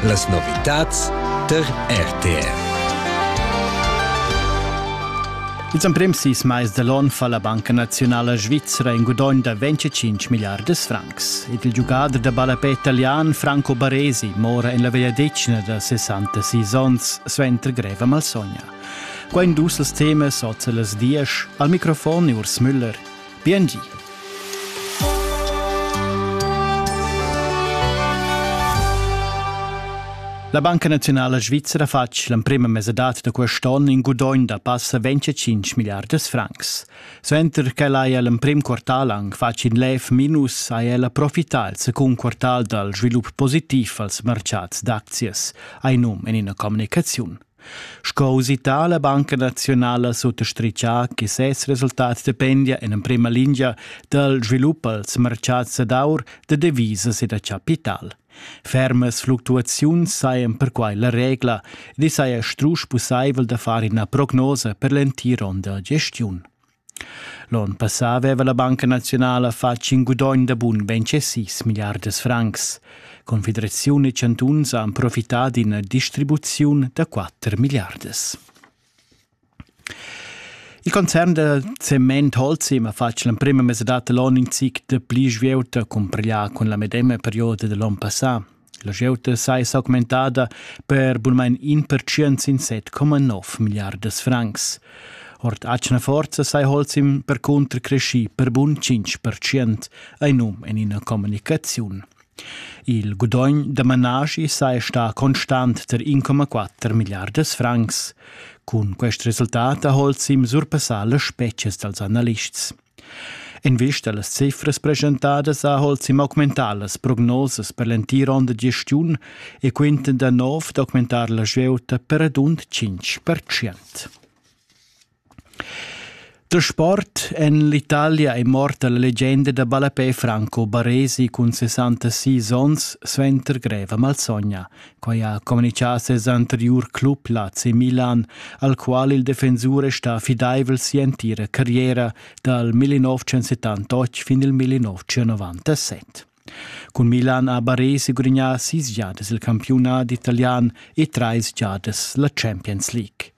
Las novitads tar RTR. Ils emprims sis mais dall'on fa la Banca Nazionala Svizra in gudogn da 25 milliardas francs ed il giugader da ballapè italian Franco Baresi mora en la vegliadetgna da 66 onns suenter greva malsogna. Qua in dus els temas oz las diesch al microfon Urs Müller. Biengi. La Banca Nazionala Svizzera ha fatg l'emprima mesadad da quest onn in gudogn da passa 25 milliardas francs. Suenter ch'el haja l'emprim quartal anc fatg in lev minus, ha el profità il secund quartal dal svilup positiv als mercads d'aczias, ha num en ina communicaziun. Sco usità la Banca naziunala suttastritgà che ses resultats dependia en emprima lingia dal svilup als martgads dad aur, da devisas e da chapital. Fermas fluctuaziuns sajan perquai la regla ed i saja strusch pussaivel da far ina prognosa per l'entir onn da gestiun. L'onn passà aveva la Banca naziunala fatg in gudogn da bun 26 milliardas francs. Confederaziun e chantuns han profità d'ina distribuziun da 4 milliardas. Il concern da cement Holzim ha fatg l'emprima mesadad dall'onn in zic da pli svieuta cumparglià cun la medema perioda dall'onn passà. La glieud sai s'augmentada per bunmain in pertschient sin 7,9 milliardas francs. Ord atgna forza sai Holzim percunter cresci per bun 5 pertschient, ein num en ina communicaziun. Il gudogn da managi sai sta constant ter 1,4 milliardas francs. Cun quest resultat ha Holzim surpassà le species dals analists. Invista las cifras presentadas ha Holzim augmentà las prognosas per l'entira onda gestiun e quinta da nov d'augmentar la svieuta per radund 5 Da sport en l'Italia è morta la legenda da ballapè Franco Baresi cun 66 onns suenter greva malsogna. Quai ha communitgà ses anteriur club Lazio Milan, al qual il defensur è stà fidaivel si'entira carriera dal 1978 fin il 1997. Cun Milan ha Baresi gudagnà sis giadas il campiunat italian e trais giadas la Champions League.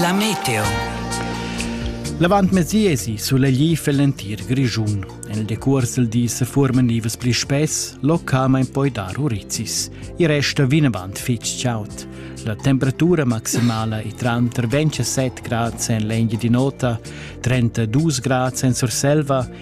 La meteo. L'avantmezdi esi sulegli fel l'entir Grischun. En decuors il di se forman nivas pli spess, localmein poi dar urizis. I resta vinavant fitg chaud. La temperatura maximala è tranter 27 grad en l'engia di nota, 32 grad en Surselva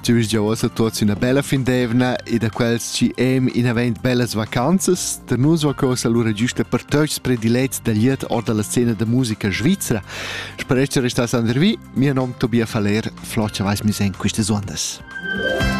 Ti vus gia uossa tuots üna bella fin d'eivna e da quels chi em in avent bellas vacanzas, da nus vacosa lura giusta per tots predilets da liet or dalla scena da musica svizzera. Sperest che restas andervi, mio nom Tobias Faller, flocha vais mis en quistas ondas.